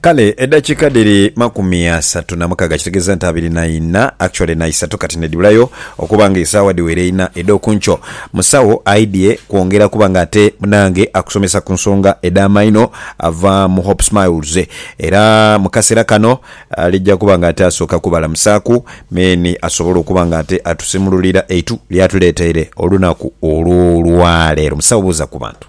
Kale edakika dhiri makumi asatu na mukaga kitegeza nti abiri na ina actually na isatu kati nedibulayo okuba nga esawa dhiwere ina edhokunkyo. Musawo aidhye kwongera kuba nga ate munange akusomesa kunsonga edha maino ava mu Hope Smiles era mukasera kano aligya kuba nga ate asoka kubalamusaku men asobole okuba nga ate atusimululira eitu lyatuleteire olunaku olwolwalero. Musawo buuza kubantu.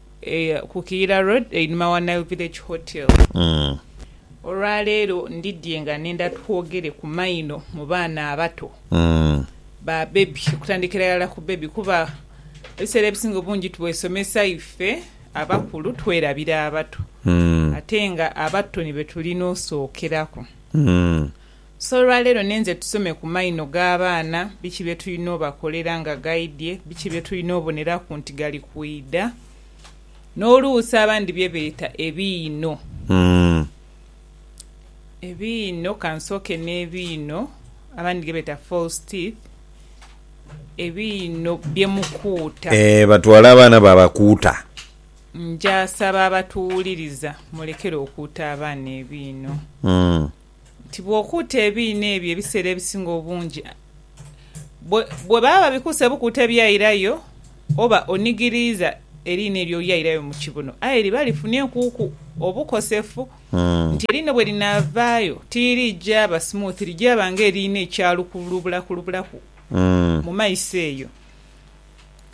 ku Kiyira Road einhuma wa Nile Village Hotel. Olwaleero ndidhye nga nenda twogere ku maino mu baana abato, ba bebi, okutandikira irala ku bebi kuba ebiseera ebisinga obungi twesomesa ife abakulu twerabira abato ate nga abato ni betulina osookeraku. So olwaleero ninze tusome ku maino g'abaana biki bye tulina obakolera nga gaidhie, biki bye tulina oboneraku nti gali kwidha, n'oluusi abandi bye beeta ebiino. Ebiino, ka nsooke n'ebiino abandi ge beeta false teeth, ebiino bye mukuuta. Eeh, batwala abaana baabakuuta. Nja saba abatuwuliriza mulekere okuuta abaana ebiino. nti bw'okuuta ebiina ebyo ebiseera ebisinga obungi bwe baba babikuuse bukuuta ebyairayo oba onigiriiza eriina eryo olyairayo mu kibuno aye liba lifunyenkuuku obukosefu nti eriina bwe linaavaayo tirigyaba smooth, ligyaba ng'eriina ekyalukulubulakulubulaku mu maiso eyo.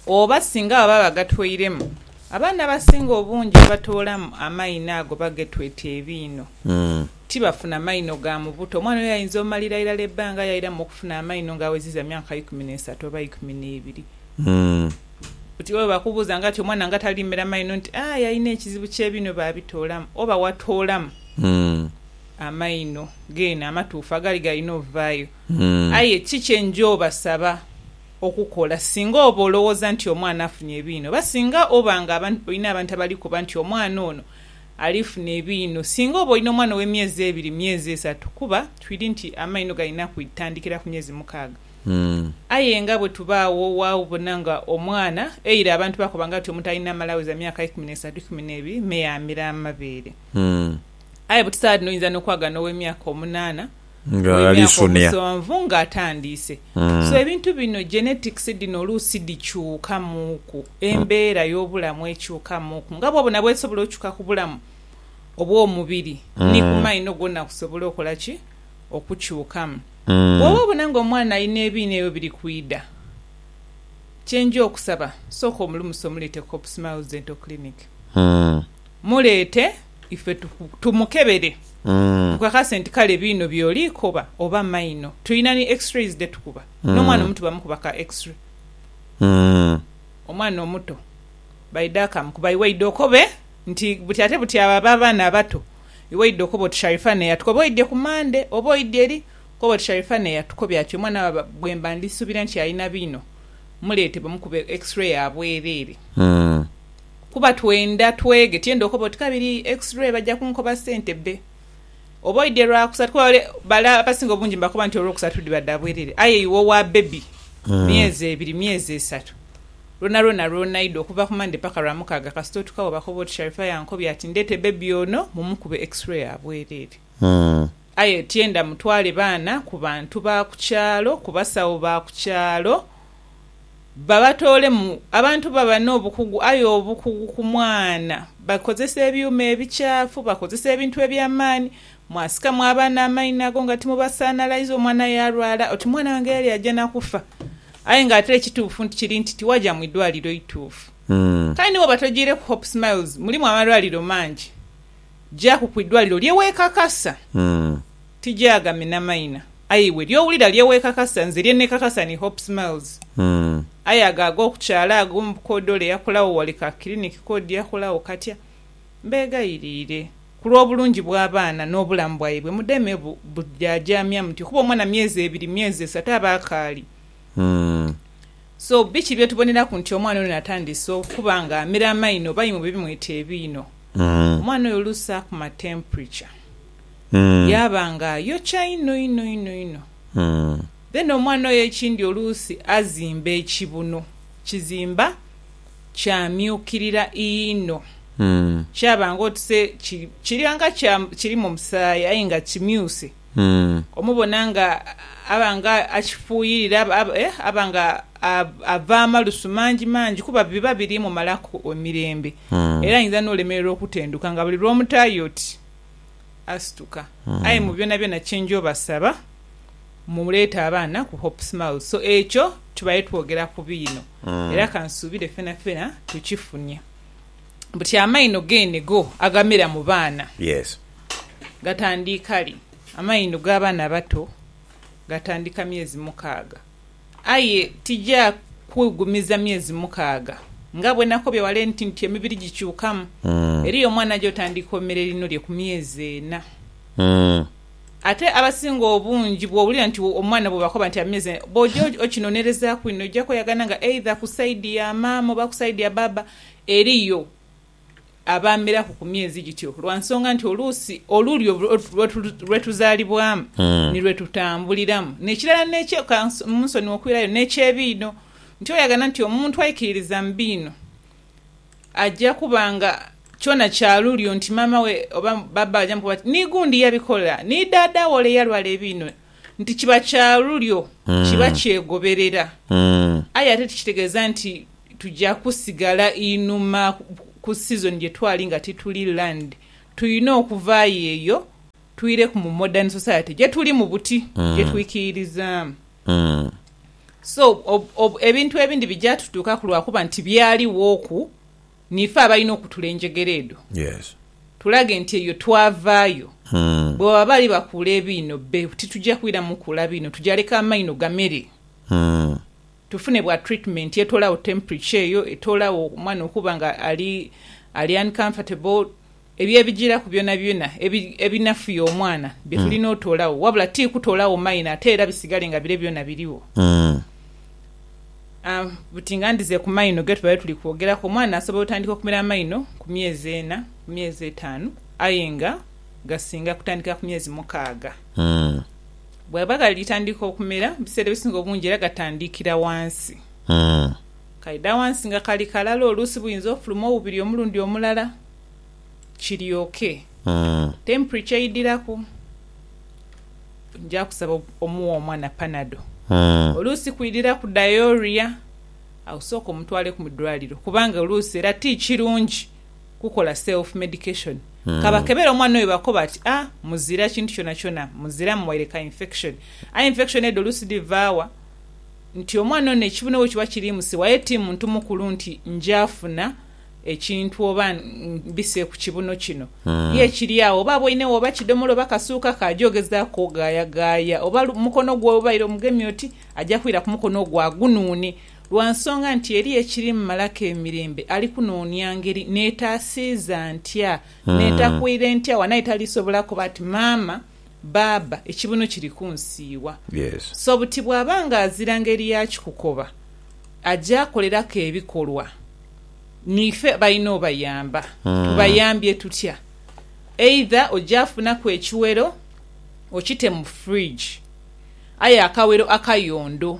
oba singa baba bagatweiremu, abaana abasinga obungi abatoolamu amaino ago bagetweta ebiino. Tibafuna maino ga mu buto. Omwana oyo ayinza omalira irala ebbanga yairamu okufuna amaino nga aweziza myaka ikumi n'esatu oba ikumi n'ebiri. Oti bwe bakubuuza nga ati omwana nga talimera maino nti, Aa, yalina ekizibu ky'ebiino baabitoolamu. Oba watoolamu amaino geene amatuufu agali galina ovaayo. Aye ki kye nja obasaba? okukola singa oba olowooza nti omwana afunye ebiinho oba singa oba nga olina abantu abali koba nti omwana ono alifuna ebiinho singa oba olina omwana ow'emyezi ebiri, myezi esatu kuba twidi nti amainho galina kutandikira ku myezi mukaaga. Aye nga bwe tuba agho waabona nga omwana eira abantu bakoba nga nti omuntu alina amala aweza myaka ikumi n'esatu, ikumi n'ebiri me yaamira amabeere. Aye bwe tutaba dhino oyinza n'okwagana ow'emyaka omunaana. w'emyaka omusonvu nga atandiise. So ebintu bino, genetics dhino oluusi dhikyukamuuku, embeera y'obulamu ekyukamuuku nga bwobona bwesobola okyuka ku bulamu obw'omubiri ni ku maino gwona kusobola okola ki? Okukyukamu. Bwoba obona nga omwana alina ebiina ebyo biri kwidha, kyenja okusaba sooka omulumuse omuleete ku Hope Smiles Dental Clinic. Muleete. ife tumukebere tukakase nti kale biino byoli koba oba maino. Tulina ni x-rays dhetukuba n'omwana omuto bamukuba ka x-ray. Omwana omuto baidha akamukuba iwe idha okobe nti buti ate buti abo aba abaana abato iwe idha okoba oti Sharifah ne yatukoba oidhye ku Monday oba oidhye eri okoba oti Sharifah ne yatukobya ati omwana wa bwemba ndisubira nti alina biino muleete bamukube x-ray ya bwerere. Kuba twenda twege tiyenda okoba oti kabiri x-ray baja kunkoba sente bbe oba oidye lwakusatu kuba bale bala abasinga obungi mbakoba nti olwokusatu diba da bwerere aye iwe owa baby myezi ebiri myezi esatu lwona lwona lwonaidha okuva ku Monday paka lwamukaaga kasita otuka webakoba oti Sharifah yankobya ati ndete baby ono mumukube x-ray ya bwerere. Aye tyenda mutwale baana ku bantu ba ku kyalo, ku basawo ba ku kyalo, babatoolemu. Abantu baba n'obukugu, aye obukugu ku mwana! Bakozesa ebyuma ebikyafu, bakozesa ebintu eby'amaani. Mwasikamu abaana amaino ago nga timubasaanalaiza, omwana yaalwala oti mwana wange yali aja na kufa. Aye ng'ate ekituufu nti kiri nti tiwaja mu idwaliro ituufu. Kale ni bwoba tojaireku Hope Smiles, mulimu amalwaliro mangi. Gyaku ku idwaliro lye weekakasa ti gyagami na maina, aye iwe ly'owulira lye weekakasa. Nze lye neekakasa ni Hope Smiles, aye ago ag'oku kyalo ago mu bukoodi ole yakolagho wali ka kiriniki k'odi yakolagho katya? Mbeegayiriire ku lw'obulungi bw'abaana n'obulamu bwaibwe mudeme bu, bu, jaajaamya mutyo kuba omwana myezi ebiri, myezi esatu aba akaali. So biki bye tuboneraku nti omwana ono atandise okuba nga amira amaino oba imwe bwe bimweta ebiino? Omwana oyo oluusi akuma temperature yaaba nga ayokya inho inho inho inho. Then omwana oyo ekindi oluusi azimba ekibuno, kizimba kyamyukirira inho kyaba nga oti se kiriba nga kirimu omusaayi aye nga kimyuse. Omubona nga aba nga akifuuyirira, aba nga ava amalusu mangimangi kuba biba biri mumalaku emirembe. Era ayinza n'olemererwa okutenduka nga buli lw'omutaayo oti asituka. Aye mu byonabyona kye nja obasaba muleete abaana ku Hope Smiles. So ekyo tubaire twogera ku biino era kansuubire fenafena tukifunye. Buti amaino geene go agamera mu baana. Yes. gatandiika li? Amaino g'abaana abato gatandiika myezi mukaaga. Aye tija kughumiza myezi mukaaga. Nga bwe nakobye wale nti nti emibiri gikyukamu, eriyo omwana aja otandiika omere lino lye ku myezi ena. Ate abasinga obungi bw'owulira nti omwana bwe bakoba nti amyezi ena, bw'oja okinonerezaaku inho oja kweyagana nga either ku saidi ya maama oba ku saidi ya baaba eriyo. abaameraku ku myezi gityo lwa nsonga nti oluusi olulyo lwe tuzaalibwamu ni lwe tutambuliramu. N'ekirala n'ekye, ka munsonighe okwirayo, n'eky'ebiino, nti oyagana nti omuntu aikiririza mu biino aja kuba nga kyona kya lulyo nti maama we oba bbaabba we aja mukoba ati ni gundi yabikola, ni daada we ole eyalwala ebiino, nti kiba kya lulyo, kiba kyegoberera. Aye ate tikitegeeza nti Tuja kusigala inhuma ku sizoni gye twali nga tituli land. Tulina okuvaayo eyo twireku mu modern society gye tulimu buti, gye twikiirizaamu. So, ebintu ebindi bija tutuukaku lwa kuba nti byaliwoku, niife abalina okutula enjegere edho tulage nti eyo twavaayo. Bwebaba bali bakuula ebiino, be tituja kwiramu kuula biino, tuja leka amaino gamere. Tufune bwa treatment etola gho temperature eyo, etola gho omwana okuba nga ali ali uncomfortable, ebyo ebijiraku byona byona ebi ebinafuya omwana byetulina otola gho wabula ti kutola gho minor ate era bisigale nga bire byona birigho. A buti nga ndhize ku maino getubadhe tuli kwogeraku, omwana asobola otandika okumera amaino ku myezi ena, ku myezi etanu aye nga gasinga kutandikira ku myezi mukaaga. Bwaba ghalitandika okumera, ebiseera ebisinga obungi era gatandikira wansi. Kaidha wansi nga kali kalala oluusi buyinza ofuluma obubiri omulundi omulala kiryoke. Tempri kyeidhiraku nja kusaba omuwe omwana panado. Oluusi kwidhiraku diorrhea awo sooka omutwaleku mu dwaliro kubanga oluusi era ti kirungi kukola self medication kabakebere omwana oyo bakoba ati a muzira kintu kyona kyona muzira muwaire ka infection aye infection edho oluusi dhivaawa nti omwana ono ekibune wekiba kirimusiwa aye ti muntu mukulu nti njafuna ekintu oba mbise ku kibuno kino ye kiri agho oba aboinegho oba kidomola oba kasuuka ke aja ogezaku ogayagaya oba mukono gwe webaire omugemye oti aja kwira kumukono ogwo agunuune lwa nsonga nti eriyo ekiri mu malako emirembe ali kunoonia ngeri neetaasiiza ntya, neetakuire ntya wano aye talisobola koba ati maama, baaba, ekibuno kiri kunsiiwa. So buti bwaba nga azira ngeri ya kikukoba, aja koleraku ebikolwa. Niife balina obayamba. Tubayambye tutya? Either oja funaku ekiwero okite mu fridge, aye akawero akayondo.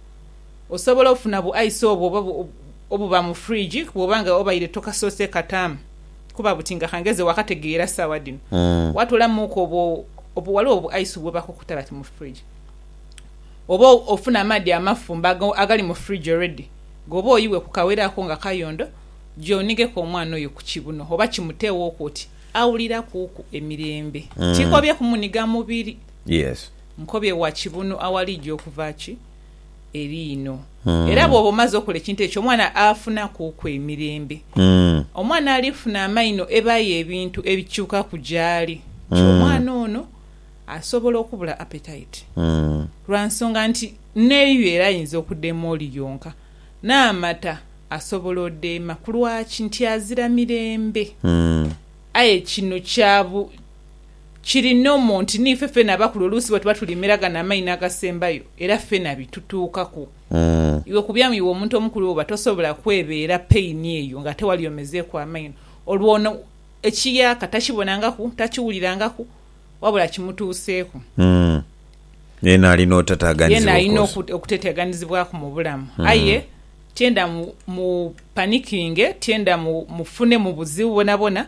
Osobola ofuna bu ice obwo oba obuba mu fridge bwoba nga obaire tokasoose kataamu kuba buti nga kangeze wakategeera sawa dhino watolamuuku obwo obwo waliwo obu ice bwebakukuta bati mu fridge oba ofune amaadhi amafumbe ago agali mu fridge already gobe oyiwe ku kawero ako nga kayondo gya onigeku omwana oyo ku kibuno oba kimuteewooku oti awulirakuuku emirembe tikobye kumuniga mubiri. Nkobye wa kibunu awaliidyo okuva ki eriino. Era bwooba omaze okola ekintu ekyo, omwana afunakuuku emirembe. Omwana alifuna amaino ebaayo ebintu ebikyukaku gyaali. Kyo omwana ono asobola okubula appetite lwa nsonga nti n'eiyo era ayinza okudeema oli yonka. N'amata asobola odeema kulwaki nti azira mirembe. Aye kino kya bu. Kiri nomu nti niife feena abakulu oluusi bwe tuba tulimira gano amaino agasembayo era feena bitutuukaku. Iwe ku byamu iwe omuntu omukulu bwoba tosobola kwebeera pain eyo nga ate wali omezeeku amaino, olwo ono ekiyaaka takibonangaku, takiwulirangaku wabula kimutuuseeku. Yeena alina oteteaganizibwa of course. Yeena alina okuteteaganizibwaku mu bulamu aye tyenda mu panikinge, tyenda mufune mu buzibu bwonabwona.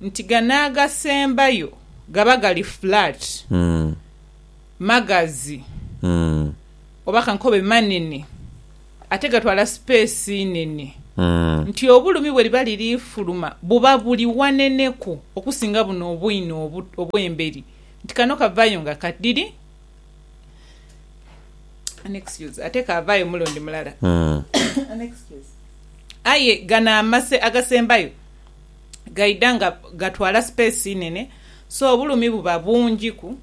nti gano agasembayo gaba gali flat, magazi oba kankobe manene ate gatwala sipeesi nene nti obulumi bwe liba liri fuluma buba buli waneneku okusinga buno obwino obw'emberi nti kano kavayo nga kadiri ate kaavaayo omulundi mulala. Aye gano agasembayo. gaidha nga gatwala space nene so obulumi buba bungi ku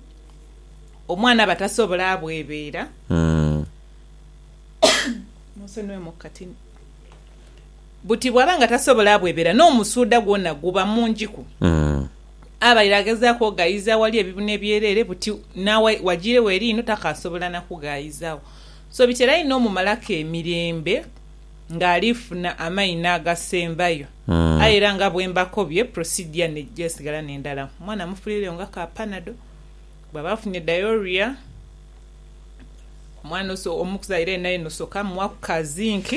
omwana aba tasobola bwebeera. Munsonyiwe mu katini. Buti bwaba nga tasobola bwebeera n'omusuudha gwona guba mungi ku abaire agezaaku oghayiza aghali ebibuna ebyereere buti n'agha wajiiregho eri inho takaasobola na kughayizaagho so bitera inho omumalaku emirembe. ng'ali funa amaina agasembayo. Aye era nga bwe mbakobye, procedure n'eija esigala n'endala. Omwana mufulireyo nga ka panado. Bw'aba afunye diarrhoea, omwana omuzaire yena yena osooka muwaku ka zinc.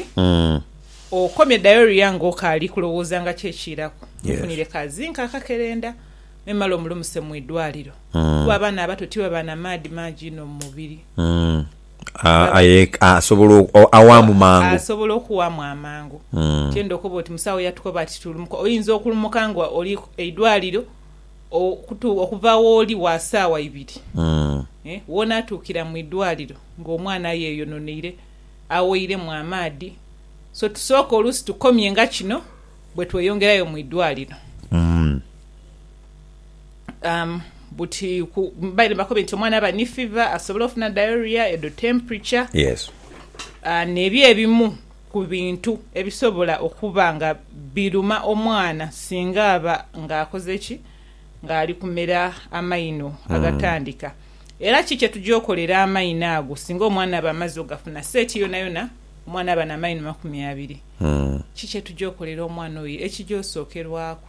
Okomye diarrhoea ng'okaali kulowooza nga ki ekiiraku, mufunire ka zinc akakerenda memale omulumuse mu idwaliro kuba abaana abato tiba ba na maadhi mangi inho mu mubiri. awaamu mangu. Asobola okuwaamu amangu. Tienda okoba oti musawo yatukoba ati tulumuka. Oyinza okulumuka nga oli eidwaliro okuva wooli wa saawa ibiri. Wonaatuukira mu idwaliro nga omwana ayeyononeire, aweiremu amaadhi. So tusooke oluusi tukomye nga kino bwe tweyongerayo mu idwaliro. buti ku baire nibakoba nti omwana aba ni fiva, asobola ofuna diarrhea, edho temperature. Yes. N'ebyo ebimu ku bintu ebisobola okuba nga biruma omwana singa aba nga akoze ki? Nga ali kumera amaino agatandika. Era ki kye tugya okolera amaino ago singa omwana aba amaze ogafuna? Seeti yonayona omwana aba n'amaino makumi abiri. Ki kye tugya okolera omwana oyo? Ekigya osookerwaku.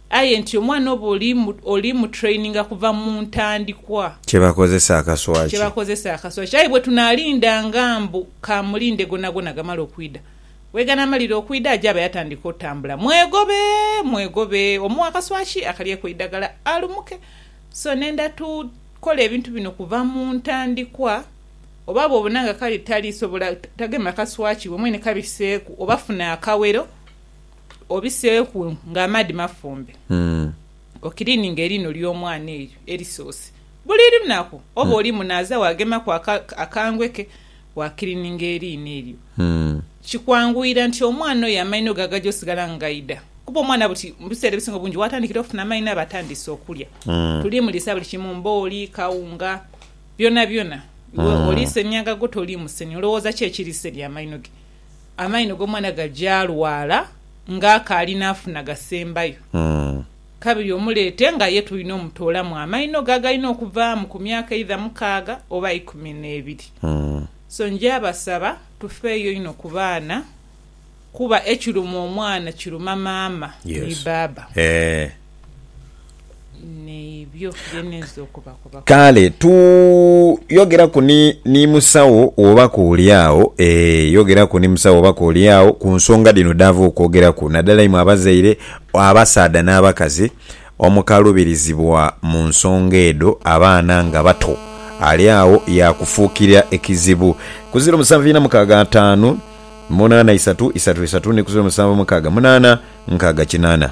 Aye nti omwana oba oli mu traininga kuva mu ntandikwa. Kyebakozesa akaswa ki? Kyebakozesa akaswa ki? Aye bwetunalindanga mbu kamulinde gonagona gamale okwida. Bweganaamalira okwida aja aba yatandika otambula. Mwegobe! Mwegobe! Omuwe akaswa ki? Akalyeku eidagala alumuke. So nenda tukola ebintu bino kuva mu ntandikwa. Oba bwobona nga kali talisobola, tagema kaswa ki, iwe mwene kabiseeku oba funa akawero. Obiseeku nga amaadhi mafumbe, okiliininge eliino ly'omwana elyo elisoose buli lunaku. Oba oli munaaza waagemaku akangwe ke, waakiliininga eliino elyo. Kikwanguyira nti omwana oyo amaino ge agaja osigala nga gaidha, kuba omwana buti mu biseera ebisinga obungi waatandikira okufuna amaino aba atandiise okulya. Tuliimuliisa buli kimu, mbooli, kawunga, byonabyona. Iwe oliisa emyagago, toliimusenia. Olowooza ki ekiriisa ebyo amaino ge? Amaino g'omwana gagyalwala nga akaali naafuna gasembayo. Kabiri omuleete nga ye tulina omutoolamu amaino ge agalina okuvaamu ku myaka eidha mukaaga oba ikumi n'ebiri. So nja basaba tufeeyo inho ku baana kuba ekiruma omwana kiruma maama ni baaba. Kale tu yogeraku ni, ni musawo wobaku oli agho, ee, yogeraku ni musawo wobaku oli agho ku nsonga dhino dhaava okwogeraku, naddala imwe abazaire, abasaadha n'abakazi omukaluubirizibwa mu nsonga edho abaana nga bato. Ali agho yaakufuukira ekizibu. Ku ziro musanvu ina mukaaga ataanu munaana isatu isatu isatu ni ku ziro musanvu mukaaga munaana nkaaga kinaana.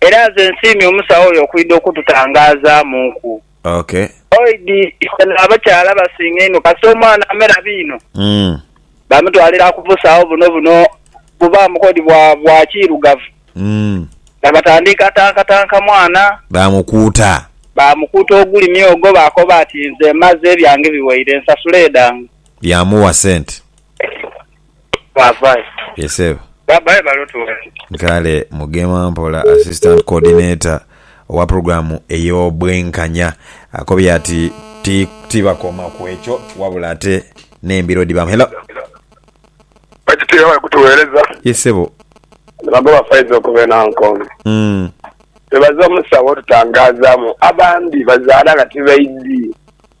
Era nze nsiimye omusawo oyo okwidha okututangaazaamuuku. Ok. Oid ife n'abakyala abasinga einho kasita omwana amera biino, Mm. bamutwalira ku busawo buno buno bubaamu k'odi bwa bwa kiirugavu, Mm. nga batandiika tankatanka mwana, Baamukuuta. baamukuuta ogulimi ogwo baakoba ati nze mmaze, ebyange biweire, nsasula edhange. Yaamuwa sente. Babaye. Yes Sebo. Babaye bali otuwaki. Kale Mugema Mpola, Assistant Coordinator owa pulogulaamu ey'obwenkanya akobye ati tibakoma ku ekyo wabula ate n'embiro dhibaamu. Hello. Bakitiibwa bali kutuweereza. Yes Ssebo. Bano ba Faiza okuva e Nankonge bwebaza omusawo otutangaazaamu abandi bazaala nga tibaidhi.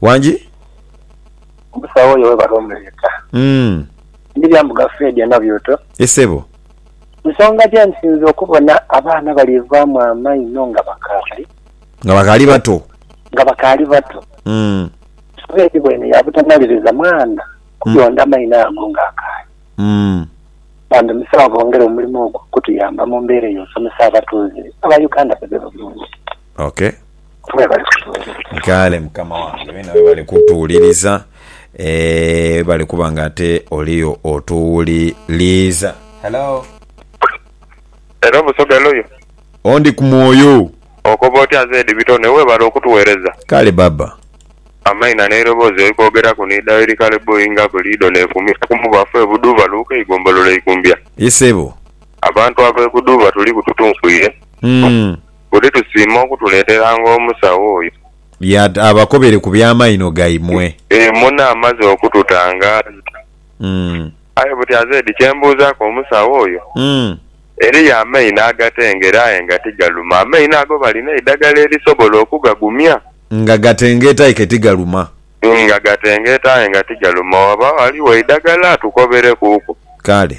Wangi. Omusawo oyo webale omuleeta. Ndhirya mbu gafeedi eno byooto. Ye sebo. Nsonga gye nsinze okubona abaana bali vaamu amaino nga bakaali. Nga bakaali bato. Nga bakaali bato. Gafeedi bwene ya butamaliriza mwana kuyonda amaino ago nga akaali. Bambi musawo bongere omulimo ogwo okutuyamba mu mbeera eyo osomesa abatuuze aba Uganda bebe bulungi. Ok. Mwebale kutuwuliriza. Kale mukama wange bene webale kutuwuliriza eeh webale kuba nga ate oliyo otuwuliriza. Hello. Hello Busoga Loyo. O ndi ku mwoyo. Okoba otya Zed Bitone webale okutuwereza. Kale baba. Amaina n'eiroboozi oikoogeraku ni Daily Kale Boy nga buli idho n'efumisa ku mubafu e Buduuba Luuka eigombololo Ikumbya. Ye sebo. Abantu ab'e Buduuba tuliku tutunkuire. Buli tusiima okutuleeteranga omusawo oyo. Ya abakobere ku by'amaino gaimwe. Ee, muno amaze okututangaaza. Mm. Aye buti azeedi kye mbuuzaaku omusawo oyo, Mm. eriyo amaino agatengera aye nga tigaluma? Amaino ago balina eidagala erisobola okugagumya? Nga gatengeeta aye ke tigaluma. Nga gatengeeta aye nga tigaluma. Waba ghaligho eidagala atukoberekuuku. Kale.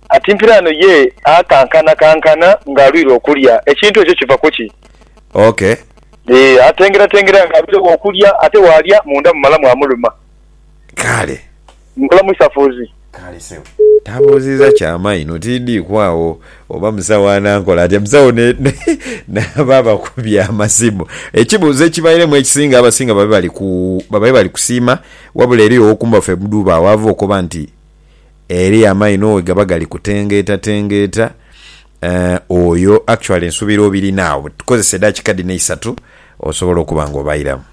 Ati mpiraano ye akankanakankana nga alwire okulya. Ekintu ekyo kiva ku ki? Ok. Ee, atengeratengera nga alwiregho okulya, ate bw'alya munda mumala mwamuluma. Kale. Nkola mu isafuuzi. Kale sebo. Tabuuziza kya maino tindiku agho oba musawo anankola atya. Musawo ne, ne, n'abo abakubye amasimu. Ekibuuzo ekibairemu ekisinga, abasinga babe bali ku, babaire bali kusiima, wabula eriyo ow'okumba ffe mudhuuba agho ava okoba nti, Ere amaino we gaba gali kutengeetatengeeta, eeh, oyo actually nsubira obirina agho. Tukozese edakika dhino eisatu osobole okuba nga obairamu.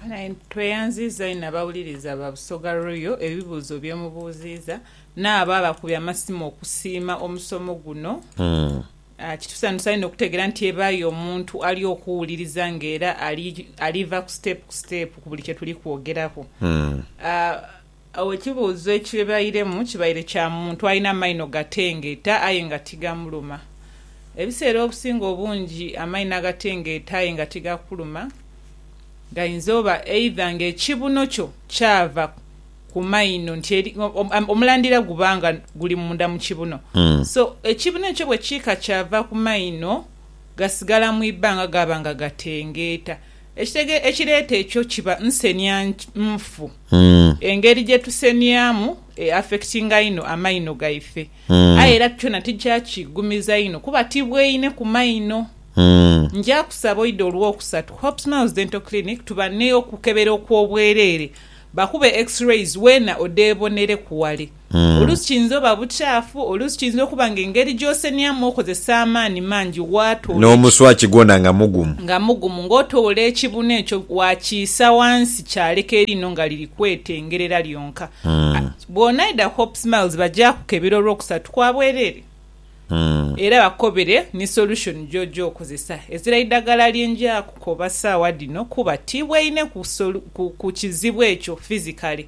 Tweyanziiza inho abawuliriza ba Busoga Royal ebibuuzo bye mubuuziiza n'abo abakubye amasimu okusiima omusomo guno. Kitusanhusa inho okutegeera nti ebaayo omuntu ali okuwuliriza ng'era ali, ali va ku siteepu ku siteepu ku buli kye tuli kwogeraku. Agho ekibuuzo ekibairemu kibaire kya muntu alina amaino gatengeeta aye nga tigamuluma. Ebiseera obusinga obungi amaino agatengeeta aye nga tigakuluma gainza oba eidha ng'ekibuno kyo kyava ku maino nti eri, omulandira guba nga guli munda mu kibuno. So, ekibuno ekyo bwe kiika kyava ku maino, gasigala mu ibanga gaba nga gatengeeta. Ekitege ekireeta ekyo kiba nsenia nfu. Engeri gye tuseniamu e affectinga inho amaino gaife. Aye era kyona tija kigumiza inho kuba tibweine ku maino. Nja kusaba oide Olwokusatu, Hope Smiles Dental Clinic tuba n'okukebera okw'obwereere bakube X-rays weena odhebonereku wale. Oluusi kiyinza oba bukyafu, oluusi kiyinza okuba nga engeri gy'osenyamu okozesa amaani mangi waatoola eki. N'omuswaki gwona nga mugumu. Nga mugumu. Ng'otoola ekibunu ekyo waakiisa wansi kyaleka eriino nga liri kwetengerera lyonka. A Bw'onaidha ku Hope's Miles bagyakukebera olw'okusatu kwa bwereere era bakukobere ni solution gy'oja okozesa. Ezira idagala lye nja kukoba saawa dhino kuba ti bweine ku solu ku ku kizibu ekyo physically.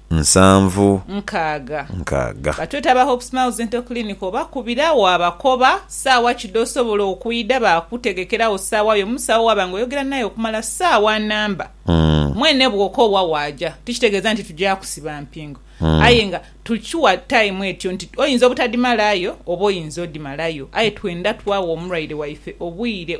nsanvu nkaaga. nkaaga. Batweta aba Hope Smiles Dental Clinic obakubira waabakoba saawa ki dh'osobola okwidha baakutegekera agho saawa yo. Omusawo waaba nga oyogera naye okumala saawa nnamba, mwene bw'okoowa waaja. Tikitegeeza nti tuja kusiba mpingo aye nga tukiwa time etyo nti oyinza obutadhimalayo oba oyinza odhimalayo aye twenda twagha omulwaire waife obwire.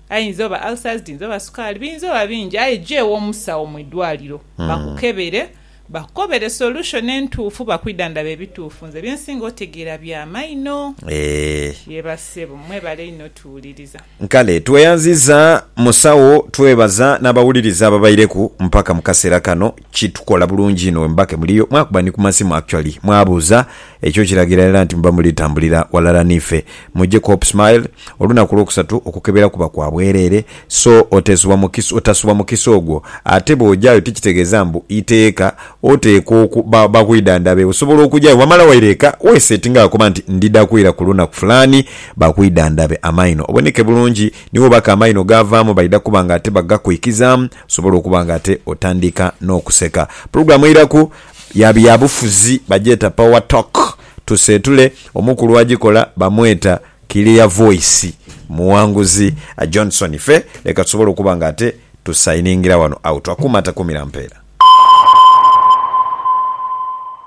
Ayinza oba ulcers, dhiyinza oba sukaali, biyinza oba bingi aye ja ew'omusawo mu idwaliro bakukebere bakukobere solution entuufu bakwidhandhabe ebituufu. Nze bye nsinga otegeera bya maino. Eeh. Yee bassebo. Mwebale inho tuwuliriza. Kale tweyanziza musawo twebaza nabawuliriza ababaireku mpaka mukaseera kano. Kitukola bulungi inho wemuba kemuliyo mwakuba ni kumasimu actually mwabuuza, ekyo kiragira era nti muba muli tambulira walala niife. Mujje ku Hope Smile olunaku olwokusatu okukebera kuba kwa bwerere so otesubwa mukisa otasubwa mukisa ogwo ate bwojayo tikitegeza mbu iteeka oteekwa oku ba bakwidandhabe osobola okujayo wamala waira eka wesettinga wakoba nti ndida kwira kulunaku fulani bakwidandhabe amaino oboneke bulungi niwo baka amaino gavamu baida kuba nga ate bagakuikizamu Osobola okuba nga ate otandika n'okuseka. Pulogulaamu eiraku ya byabufuzi bagyeta Power Talk. Tuseetule omukulu agikola bamweta Clear Voice Muwanguzi Johnson. Ife leka tusobole okuba nga ate tusayiningira wano out. Akuuma takuumira mpeera.